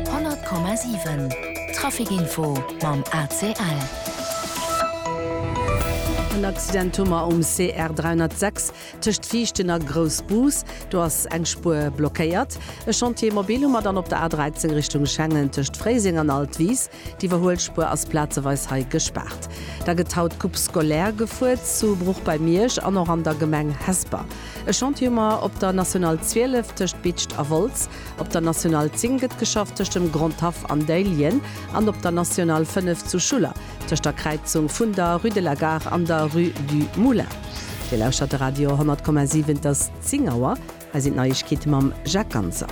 100,7 Trafic info mam ACL. En Accident hu mer um CR 306 tëscht Viichten a Groussbus. Do ass eng Spuer blockéiert. E Chantier mobile hu mer dann op der A 13 Richtung Schengen tëscht Fréiseng an Altwis. D'Iwwerhuelspuer ass plazeweis hei gespaart. Da gëtt haut d'Coupe scolaire gefuer, zu Bruch bei Miersch an och an der Gemeng Hesper. E Chantier hu mer op der National 12 tëscht Bitscht a Wolz, op der National 10 gëtt geschafft tëscht dem Grand Haff an Déiljen an op der National 5 zu Schuller tëscht der Kräizung vun der Rue de la Gare an der Rue du Moulin. Dir lauschtert de Radio 100,7, et ass 10 Auer. Hei sinn d'Neiegkeete mam Jacques Ganser.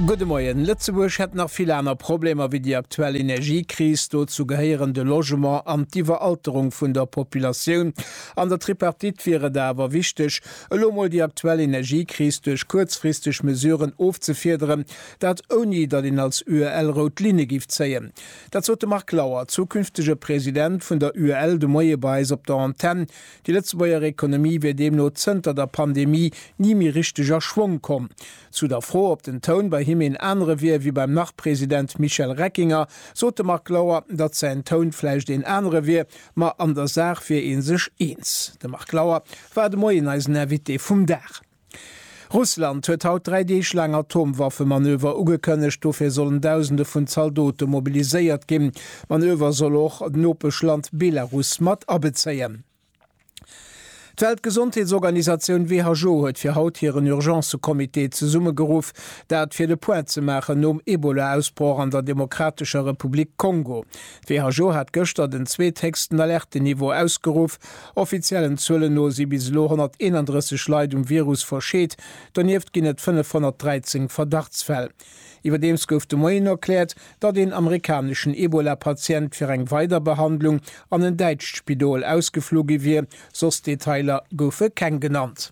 Gudde Moien. Lëtzebuerg hätt nach vill aner Problemer wéi déi aktuell Energiekris. Dozou gehéieren de Logement an d'Iwweralterung vun der Populatioun. An der Tripartite wier et awer wichteg, elo mol déi aktuell Energiekris duerch kuerzfristeg Mesuren ofzefiederen, dat ouni datt een als UEL rout Linne giff zéien. Dat sot de Marc Lauer, zukünftege President vun der UEL, de Moie bei eis op der Antenn. Déi Lëtzebuerger Ekonomie wier deemno zënter der Pandemie ni méi richteg a Schwong komm. Zu der Fro, ob den Toun bei him een anere wier wéi beim Nach-President Michel Reckinger, sot de Marc Lauer, datt säin Toun vläicht een anere wier, ma an der Saach wier ee sech eens. De Marc Lauer war de Moien eisen Invité vum Dag. Russland huet haut dräi Deeg laang Atomwaffemanöver ugekënnegt. Dofir sollen Dausende vun Zaldote mobiliséiert ginn. D'Manöver soll och d'Nopeschland Belarus mat abezéien. D'Weltgesondheetsorganisatioun WHO huet fir haut hiren Urgencecomité zesummegeruff. Dat fir de Point ze maachen nom Ebola-Ausbroch an der Demokratescher Republik Kongo. D'WHO hat gëschter den zweetheechsten Alertenniveau ausgeruff. Offiziellen Zuelen no si bis elo 131 Leit um Virus verscheet, donieft ginn et 513 Verdachtsfäll. Iwwerdeems gouf de Moien erkläert, datt een amerikaneschen Ebola-Patient fir eng weider Behandlung an en däitscht Spidol ausgeflu gi wier, soss Detailer goufe keng genannt.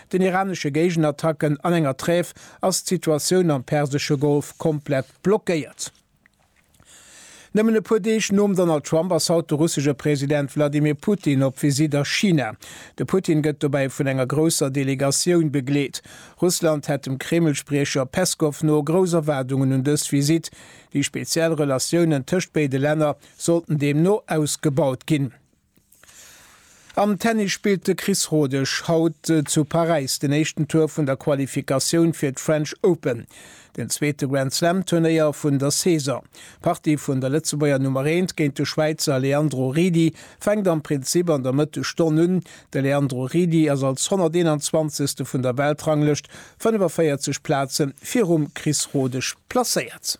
Den iranesche Géigenattacken an enger Trêve ass d'Situatioun am persesche Golf komplett blockéiert. Nëmmen e puer Deeg nom Donald Trump ass haut de russesche President Wladimir Putin op Visitt a China. De Putin gëtt dobäi vun enger grousser Delegatioun begleet. Russland hätt dem Kreml-Spriecher Peskow no grouss Erwaardungen un dës Visitt. Déi speziell Relatiounen tëscht béide Länner sollten deemno ausgebaut ginn. Am Tennis spillt de Chris Rodesch haut zu Paräis den éischten Tour vun der Qualifikatioun fir d'French Open, den zweete Grand-Slam-Turnéier vun der Saison. D'Partie vun der Lëtzebuerger Nummer Eent géint de Schwäizer Leandro Ridi fänkt am Prinzip an der Mëttesstonn un. De Leandro Ridi ass als 121. vun der Weltranglëscht 45 Plaze virum Chris Rodesch placéiert.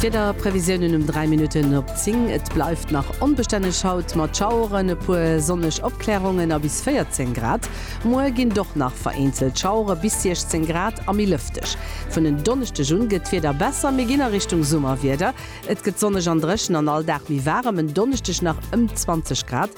D'Wieder Previsiounen um 3 Minutten op 10, Et bleift nach onbestänneg haut mat Schaueren, e puer sonneg Opklärungen a bis 14 Grad. Muer ginn doch nach vereenzelt Schauere bis 16 Grad a méi lëfteg. Vun en Donneschdeg un gëtt d'Wieder besser, mir ginn a Richtung Summerwieder. Et gëtt sonneg an dréchen an all Dag méi waarem, en Donneschdeg nach ëm 20 Grad.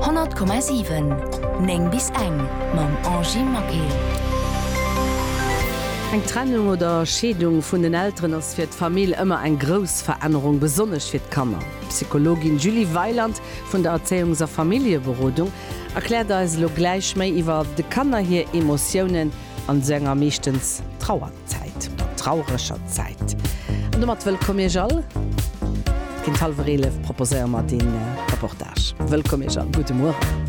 100,7 9 bis eng mam Angy Maquet. Eng Trennung oder Scheedung vun den Elteren ass fir d'Famill ëmmer eng grouss Verännerung, besonnesch fir d'Kanner. D'Psychologin Julie Weiland vun der Erzéiungs a Familljeberodung erkläert eis elo gläich méi iwwer de Kanner hir Emotiounen an esou enger meeschtens Trauer. Zäit, der traureger Zäit. An domat wëllkomm Iech all. Géint hallwer 11 proposéiere mer dee Reportage. Wëllkomm Iech all. Gudde Mueren.